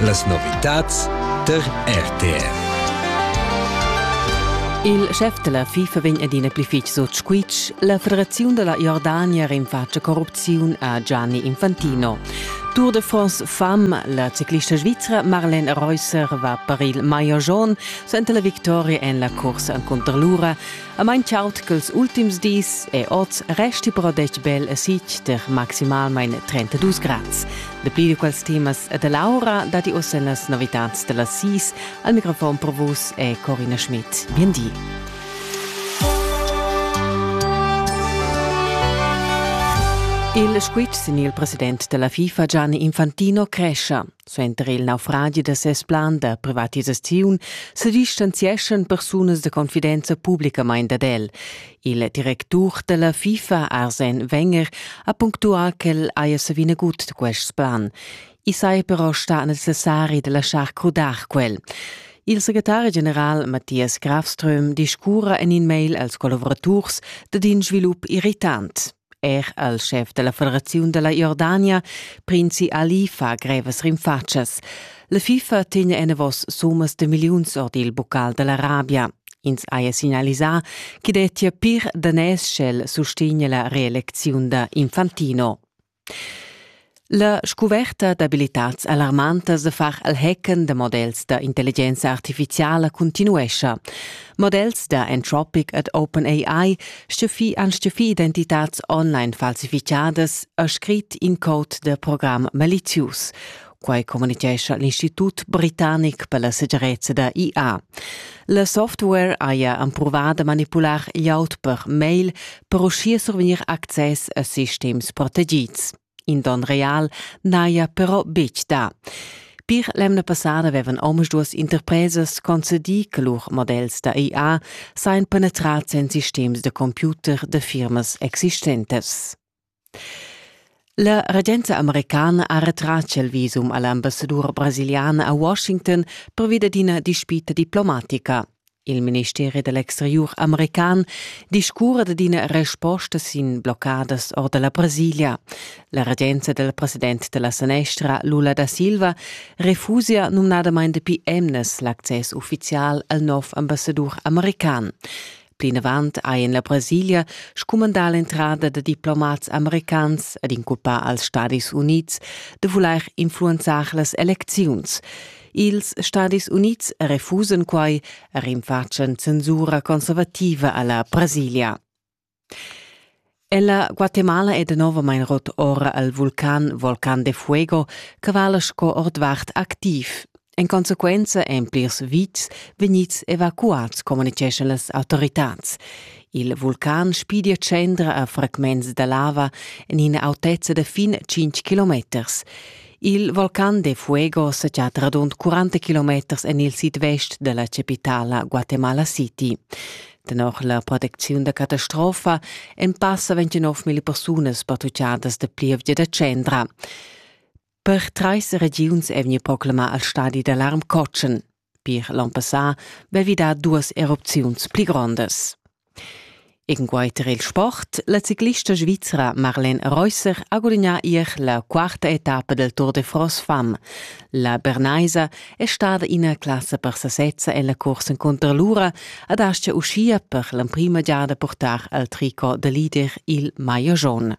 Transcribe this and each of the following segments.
Las novitads tar RTR. Il chef da la FIFA vegn adina pli fitg sut squitsch. La federaziun da la Jordania rinfatscha corrupziun a Gianni Infantino. Tour de France femme, la ciclista svizra Marlene Reusser va per il maillot jaun suenter la victoria en la cursa cunter l'ura. A mein chaut ch'ils ultims dis e oz resti però detg bel e sich ter maximalmain 32 grads. Dapli di quels temas e da Laura datti ussa las novitads da las sis. Al microfon per vus è Corina Schmidt. Bien di. Il squitsch sin il president della FIFA Gianni Infantino crescia. Suenter il naufragi da ses plan da privatisaziun se distanzieschan persunas de confidenza publicamein dad el. Il directur della FIFA Arsen Wenger ha punctuà ch'el haja savina gut quest plan. I sei però sta necessari de laschar crudar quel. Il secretari general Matthias Grafström discurra en in mail als collaboraturs dad in svilup irritant. Er al schef della Federaziun della Jordania, Prinzi Ali, fa grevas rinfatschas. La FIFA tegna enavos summas de milliuns ord il bucal dell'Arabia. Ins haja signalisà che dettia pir daners sch'el sustegna la reelecziun da Infantino. La scuverta d'abilitats alarmantas da far al hacken da models da intelligenza artificiala continuescha. Models da Anthropic ed OpenAI steffi an steffi identitats online falsificadas a scrit in code da program malicius. Quai communitgescha l'Institut britannic per la segirezza da IA. La software haja emprovà da manipular l'aut per mail per uschia survegnir access a sistems protegids. In don real n'haja però betg dà. Pir l'emna passada avevan omisduas interpresas concedì che lur models da AI sajan penetrads en sistems da computer da firmas existentes. La regenza americana ha retratg il visum a l'ambassadur brasilian a Washington pervi d'ina dispita diplomatica. Il ministeri da l'exteriur american discurra dad ina resposta sin bloccadas or da la Brasilia. La regenza del president della sanestra Lula da Silva refusia numnadamain dapi emnes l'access uffizial al nov ambassadur american. Plinavant ha en la Brasilia scumandà l'entrada da diplomats americans ad inculpar als Stadis Unids de voler influenzar las elecziuns. Ils Stadis Unids refusan quai, rinfatschend censura conservativa a la Brasilia. Ella Guatemala è de novamain rot ora al vulcan Volcan de Fuego che vala sco ordvart activ. En consequenza èn plirs vitgs vegnids evacuads, communiceschan las autoritads. Il vulcan spidia tschendra a fragments da lava en ina autezza da fin 5 kilometers. Il volcan de Fuego sa chat radund 40 kilometers en il sidvest della capitala Guatemala City. Tenor la protecziun da catastrofa en passa 29.000 persunas pattugiadas de plievgia da tschendra. Per treis regiuns è vegni proclamà al stadi d'alarm cotschen. Pir l'an passà vevi dà duas erupziuns pli grondas. Enqueiter il sport, la ciclista svizra Marlene Reusser ha gudignà ier la quarta etappa del Tour de France Femme. La Bernaisa è stada ina classa per sasezza ella corsa contro l'ura ad aschia uschia per l'emprima giada portar al tricot da leader il maillot jaune.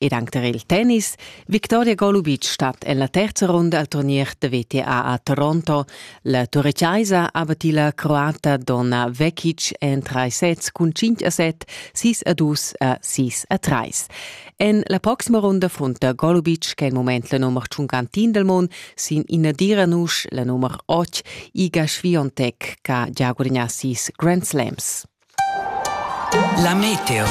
Ed anc tar il tennis. Victoria Golubic stat en la terza runda al turnier da WTA a Toronto. La turegiaisa ha battì la croata Donna Vekic en trais sets cun cinc a set, sis a dus e sis a trais. En la proxima runda frunta Golubic che il moment la nummer tschun Can Tindelmon sin ina dira nusch, la nummer 8, Iga Sviontek, che ha gudagnà sis Grand Slams. La meteo.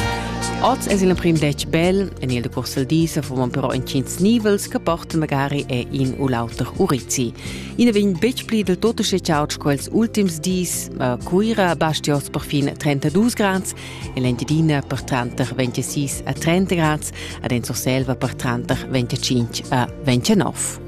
Oz es il emprim detg bel, en il de Cursaldisa fuman però intgins nivels che portan magari e in u l'auter urizi. I ne vegn betg pli del tutto schiaut sco ils ultims dis. A Cuira basti oz per fin 32 grads, en l'Engiadina per tranter 26 a 30 grads, ad en Surselva per tranter 25 a 29.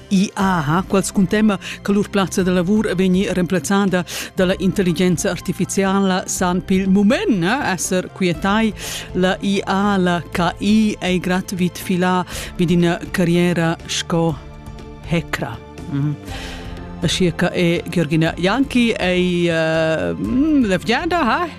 IA ha quals cun tema che lur plazza da lavur è vegnir remplazzada dalla intelligenza artificiala san pil mument eh, esser quietai. La IA, la KI, ei gratuit filà vid ina carriera sco hackra. Mm -hmm. Sia che è Georgina Janki, è uh, levgiada, ha?